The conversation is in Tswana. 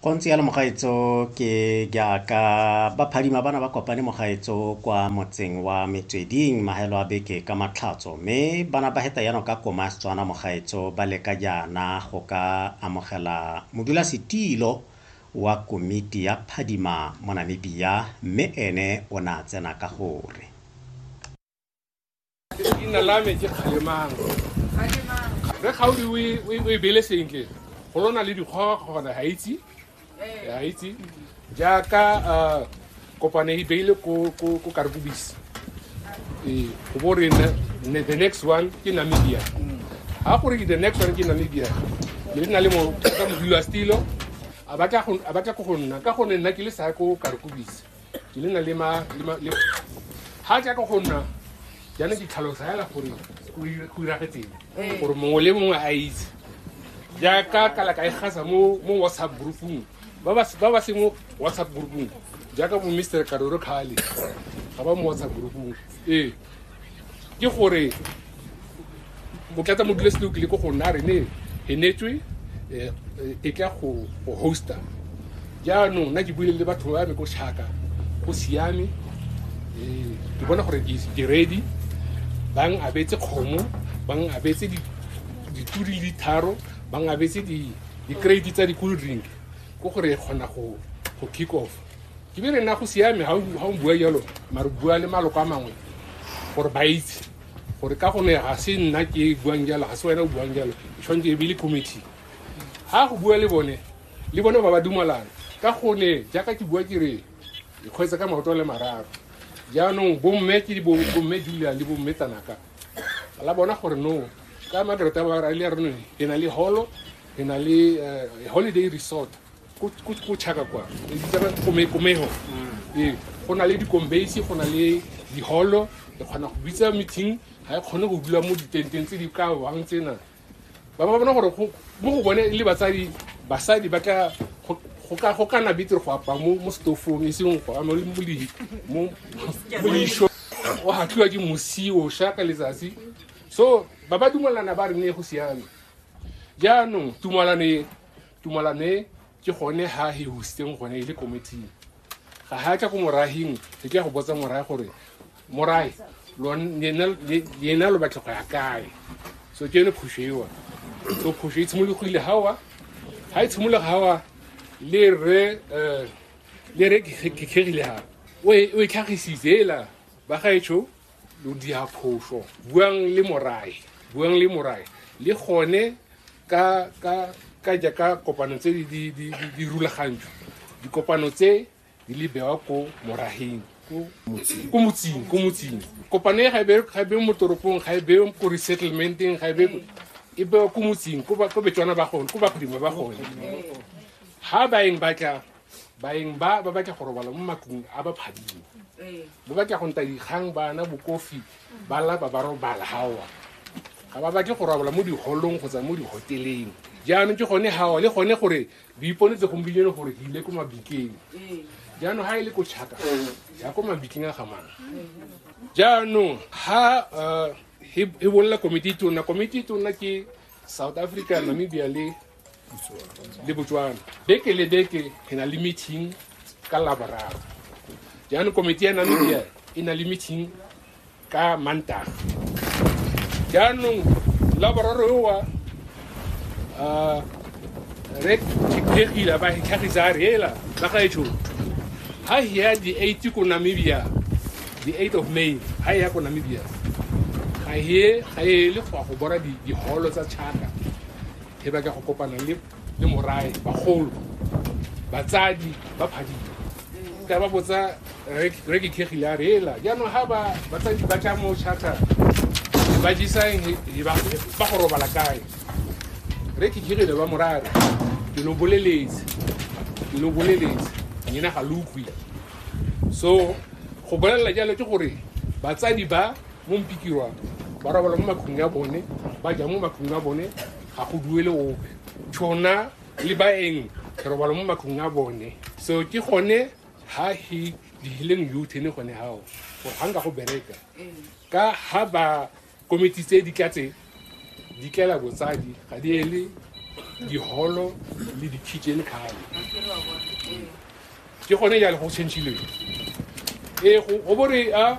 go ntse yalo mogaetso ke jaaka ba phadima bana ba kopane mogaetso kwa motseng wa metsweding maelo a beke ka matlhatso mme bana ba heta yano ka koma setswana mogaetso ba leka jaana go ka amogela modulasetilo wa komiti ya phadima mo namibia mme ene o ne a tsena ka gore leina la me ke kgalemang re kgaodi o e- o e- o e bele sentle go lona le dikgoga kgona ga itse ga itse jaaka ah, kopane e beile ko ko- ko karkobisi ee go bo re ne- ne- the next one ke namibia ga gore ke the next one ke namibia le na le mo ka modilo wa stilo a batla go- a batla ko go nna ka gonne nna ke le sa ko karkobisi ke le na le ma le ma le ha ja ka go nna jana ke tlhalosa yala gore go ira- go iragetseng Eh. gore mongwe le mongwe a itse jaaka kala ka e gasa mo mo whatsapp groupung ba ba ba ba seng mo whatsapp groupung jaaka bo mr karoro khale ga ba mo whatsapp groupung ee ke gore motlatsa modulasetilo kile ko go nna re ne e netswe eh, eh, e tla go go hosta jaanong nna ke buile le batho ba me ko shaka go siame eh, ke bona gore ke ke ready bang abetse kgomo bang abetse di- dituri di tharo bang abetse di- di-crate tsa di-cool drink ko gore e kgona go go kick off ke be re nna go siame ga o bua jalo mare bua le maloko a mangwe gore ba itse gore ka gone ga se nna ke buang jalo ga se wena o buang jalo tshwanetse e be le committee ga go bua le bone le bone ba ba dumalana ka gone jaaka ke bua ke re ikgwetsa ka maoto le mararo jaanong bomme ke bomme julia le bomme tanaka la bona gore no ka magreta ba ra le re ne na le holo re na le eh, holiday resort ko chaka kwa komeho ee go na le dikombeisi go na le diholo re kgona go bitsa meeting ga e kgone go dula mo ditenteng tse di ka wang tsena ba ba bona gore mo go bone le batsadi basadi ba ka go kana betere go apa mo mo stofong e seng go ama mo leisho o hatlhiwa ke mosi o sha ka letsatsi so ba ba dumelana ba re ne go siame jaanong tumalane Tumalane ke gone ha he husitseng gone e le komiting ga ha tla ko morahing re tla go botsa morae gore morae lena lo batla go ya kae so ke yone phoso ewa so phoso e tshimologile gawa ga e tshimologa gawa le re um le re kekegile ga o e tlhagisitse ela ba gaetsho lo dia phoso buang le morae buang le morae le gone ka ka ka jaaka kopano tse di di di di- di rulagantswe dikopano tse di le bewa ko morageng ko ko motseng ko motseng kopano e ga e be- ga e be mo toropong ga e be ko resettlementeng ga e be ko- e bewa ko motseng ko ba- ko betswana ba gone ko bagodimo ba gone ha ba eng batla baeng ba ba batla go robala mo matlong a ba phadimo ba batla go nta dikgang bana bokofi ba lapa ba robala gaowa ga ba batle go robala mo diholong kgotsa mo dihoteleng jaanong ke gone gaowa le gone gore di iponetse gompieno gore di ile ko mabikeng jaanong ga e le ko tšhaka ya ko mabikeng a gamana jaanong ga um e bolela komiti e tona komiti e tona ke south africa namibia le le botswana beke le beke re na le meeting ka laboraro jaanong komiti ya namibia e na le meeting ka mantaga jaanong laboraro ewa uh, re thekgile ba tlhagisa a reela ba gaetsho ha hea di 8 ko namibia the 8 of may ha ya ko namibia ga e ga e le go go bona di holo tsa chaka He ba ka go kopana le le morae bagolo batsadi ba phadile ka ba botsa re ke khegile a re ela jaanong ga ba batsadi ba tla mo charter ba jisa eng he ba ba go robala kae re ke khegile ba morare ke lo boleletse ke lo boleletse nyena ga lo utlwi so go bolelela jalo ke gore batsadi ba mo mpikiwa ba robala mo matlong ya bone ba ja mo matlong a bone ga go duele ope tšhona le baeng re robala mo matlong a bone so ke gone ha he dihileng youth ne gone hao gore ga nka go bereka ka ha ba komiti tse di tlatse di tlela botsadi ga di ele diholo le di-kitchen kgale ke gone jale go changeleng ee go bore a